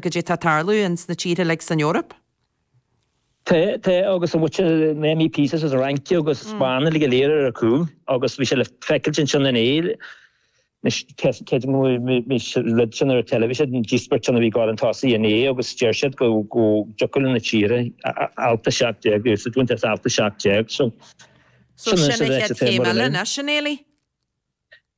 goidé atá ag tarlú in sna tíortha uilig san Eoraip. Tá, tá, agus an bhfaca na MEPs as an Fhrainc agus an Spáinn uilig go léir ar a cúl agus bhí sé le feiceailt ansin inné, anois creidfidh mé mise rud sin ar an teilifís, an díospóireacht sin a bhí ag gabháil chun tosaigh inné agus deir siad go, go dtiocfadh le na tíortha alt 17 úsáid a bhaint as alt 17 so, sin anois an ráiteas atá ag Muireann ann. So sin an chéad chéim eile anois, a Neilí?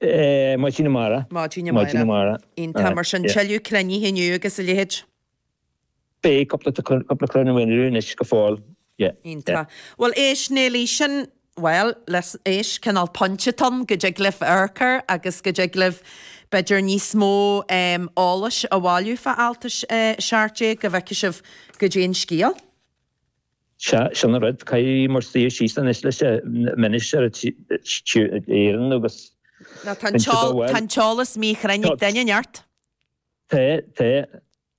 Maidin amárach. Maidin amárach. Iontach mar sin, tuilleadh cruinnithe inniu agus a leithéid? Beidh, cúpla cruinniú inniu anois go fóill, yeah. Iontach. Bhuel éist Neilí, sin, bhuel, listen, éist, cineál pointe amháin, go dtig libh ocrú agus go dtig libh b'fhéidir níos mó em eolais a bhailiú fá alt a seacht déag go bhfeicfidh sibh goidé an scéal. Sea, sin an rud. Caithfidh muid suí síos anois leis an Minister Éireann agus. Ná tá an t-eolas míchruinn ag duine ar bith. Tá, tá,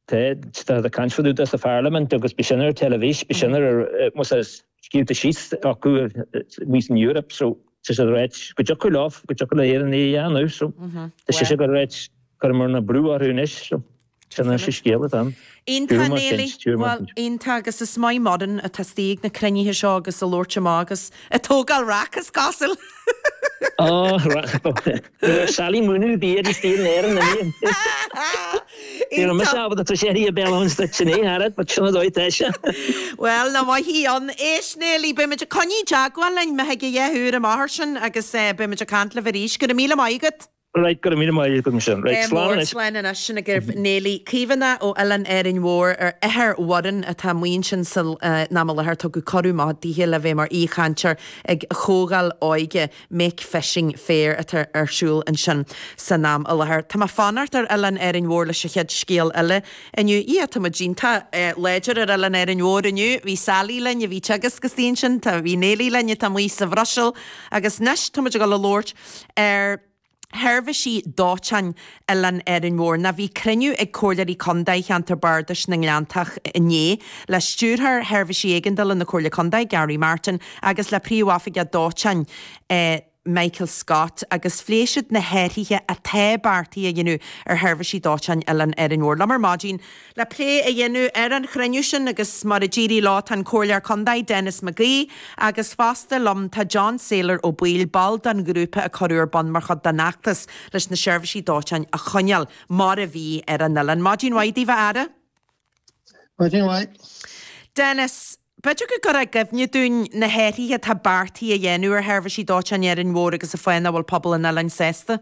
tá. Táthar ag caint fadúda sa Pharlaimint agus bhí sin ar an teilifís, bhí sin ar, más ea, scríofa síos acu anseo san Eoraip so tá sé ráite go dtiocfadh leo, go dtiocfadh le hÉireann é a dhéanamh so tá sé sin ráite, cuirfidh muid an brú orthu anois so. Téann sé scéal as an. Iontach, Neilí. Bhuel, iontach agus beidh Muireann ag freastal ar na cruinnithe seo agus ag labhairt amach agus ag tógáil raic, is cosúil. Ó, raic. Sally Muineadh bhí ar an stíl in Éirinn inné. Ní raibh mise ábalta tar éis a thí a béal ann sa tine, Harriet, but sin an dóigh atá sé. Bhuel, nár mhaith í. Éist, Neilí, beimid ag coinneáil i dteagmháil linn, maith thú, fá dtaobh den ábhar sin, agus beimid ag caint libh arís. Go raibh míle maith agat. Right, go raibh míle maith agat go sin. Right, slán anois. Slán anois sin agaibh Neilí Kavanagh ó Oileán Árainn Mhór athair Mhuirinn atá amuigh ansin san am i láthair tugadh cuireadh maith daoithe le bheith mar aoichainteoir ag Comhdháil Óige Make Fishing Fair atá ar siúl ansin san am i láthair. Tá mé ag fanacht ar Oileán Árainn Mhór leis an chéad scéal eile inniu. Ia, tá muid déanta. Láidir ar Oileán Éirinn Mhóir inniu. Bhí Sally linn a bhí ag teagasc istigh ansin. Tá, bhí Neilí linn atá amuigh sa Bhruiséil. Agus anois tá muid ag dul a labhairt. ar sheirbhísí dóiteáin Oileán Árainn Mhór ná bhí cruinniú ag Comhairleoirí Contae Cheantar Bardais na nGleanntach inné le Stiúrthóir Sheirbhísí Éigeandála na Comhairle Contae, Gary Martin, agus le Príomhoifigeach Dóiteáin, Michael Scott, agus phléigh siad na hathruithe atá beartaithe a dhéanamh ar sheirbhísí dóiteáin Oileán Árainn Mhór. Liom ar maidin. Le plé a dhéanamh ar an chruinniú sin agus mar a d'éirigh leo tá an Comhairleoir Contae, Denis McGee, agus fosta liom tá John Sailor Ó Baoill, ball den ghrúpa a cuireadh ar bun mar chuid den fheachtas leis na seirbhísí dóiteáin a choinneáil mar a bhí ar an oileán. Maidin mhaith daoibh, a fheara. Maidin mhaith. Denis, b'fhéidir go gcuirfeá i gcuimhne dúinn na hathruithe atá beartaithe a dhéanamh ar sheirbhísí dóiteáin Árainn Mhór agus cén fáth nach bhfuil pobal an oileáin sásta.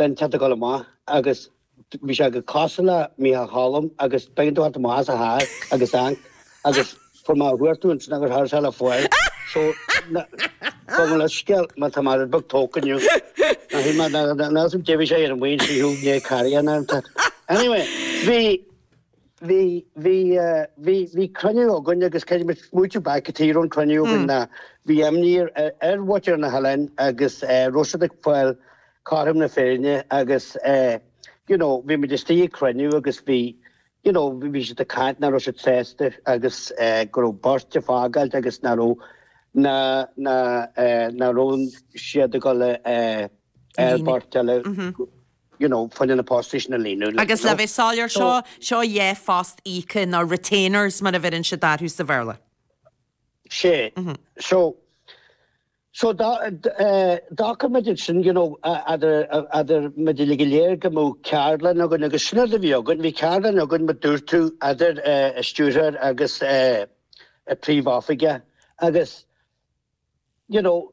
den tArticle amach agus bhí sé go cosúil le Micheál Choilm agus b'éigean dó theacht amach as a theach agus agus chuaigh mé a chuartú ansin agus cha raibh sé le fáil so gabhaigí mo leithscéal má tá mé rud beag tógtha inniu ná hí mé ná ná ná ná deimhin sé ar an mhaoin sí thú gné cairéan ann anyway bhí bhí, bhí, bhí, bhí cruinniú againn agus caithfidh muid smaoitiú back cad tuige a raibh an cruinniú againn ná bhí imní ar, ar, ar Watch ar na hOileáin agus nach raibh siad ag fáil cothrom na Féinne agus you know bhí muid istigh ag cruinniú agus bhí you know bhí siad ag caint nach raibh siad sásta agus go raibh beirt ag fágáilt agus nach raibh nach, nach, nach raibh siad ag dul ar beirt eile. you know, fá choinne na postais a líonadh, like, you know. Agus le bheith soiléir, So. seo seo é post íoctha, nó retainers mar a bheireann siad orthu sa Bhéarla. Sea. So, so dá, eh, d'fhág muid ansin, you know, eh, eadar, eh, eadar muid uilig go léir go mbeadh ceardlann againn agus sin rud a bhí againn, bhí ceardlann againn mar dúirt tú eadar, eh, an stiúrthóir agus, eh, an príomhoifigeach agus, you know,